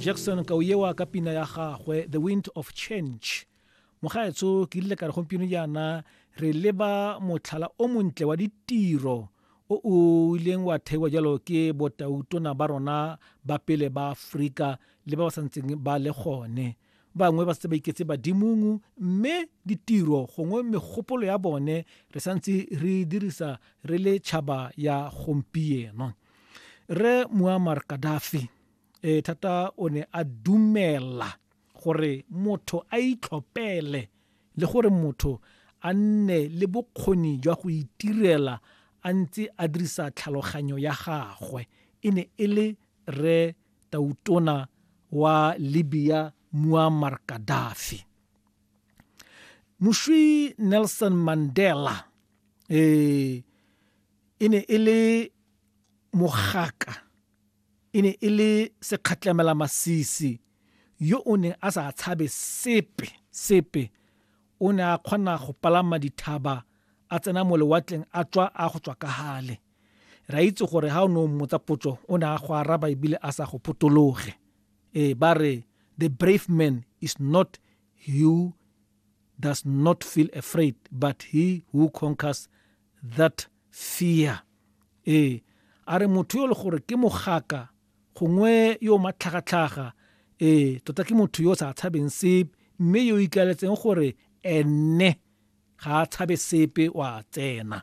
jackson ka o ewa ka pina ya gagwe the wind of change mogaetso ke ile ka re gompieno jaana re leba motlhala o montle wa ditiro o o ileng wa theiwa jalo ke botautona ba rona ba pele ba aforika le ba ba santseng ba le gone Bangwe ba setse ba iketse badimong mme ditiro gongwe megopolo ya bone re santse re dirisa re le tšhaba ya gompieno. Re Muammar Gaddafi e thata o ne a dumela gore motho a itlhopele le gore motho a nne le bokgoni jwa go itirela a ntse a dirisa tlhaloganyo ya gagwe e ne e le re tautona wa libya muammar gaddafi mošwi nelson mandela eh, e ne e le mogaka e ne e le sekgatlamela masisi yo o neng a sa tshabe sepe sepe o ne a kgona go palama dithaba a tsena mo lewatleng a tswa a go tswa ka gale re a itse gore ga o ne o mmotsa potso o ne a go araba ebile a sa go potologe ee ba re the brave man is not who does not feel afraid but he who conquers that fear ee a re motho yo le gore ke mogaka gongwe yo matlhagatlhaga ee tota ke motho yo o sa tshabeng sepe mme yo ikaletseng gore ene ga a tshabe sepe wa tsena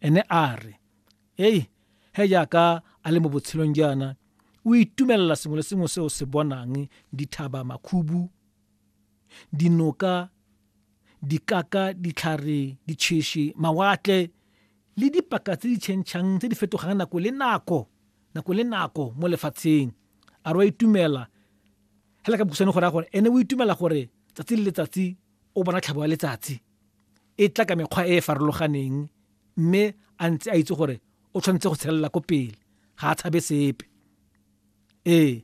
ene a re ei he jaaka a le mo botshelong jaana o itumelela sengwe le sengwe se o se bonang dithaba makhubu dinoka dikaka ditlhare ditšheši mawatle le dipaka tse di tšhentšhang tse di fetogang nako le nako nako le nako mo lefatsheng a re wa itumela hela ka bokhutshwane gore a gore ene o itumela gore tsatsi le letsatsi o bona tlhabo ya letsatsi e tla ka mekgwa e e farologaneng mme a ntse a itse gore o tshwanetse go tshelela ko pele ga a tshabe sepe ee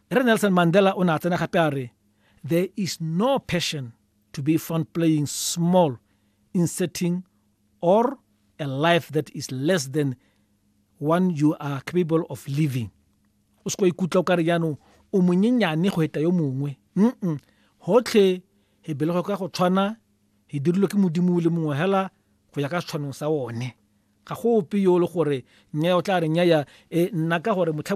re nelson mandela o ne a tsena gape a re there is no passion to be found playing small in setting or a life that is less than one you are capable of living o se ko ikutlwa o kare jaanong o monyenyane go eta yo mongwe mm gotlhe e belegwe ka go tshwana, e dirilwe ke modimo o le mongwe hela go ya ka setshwanong sa one ga go ope yo le gore nnyaya o tla re nnyaya e nna ka gore motlha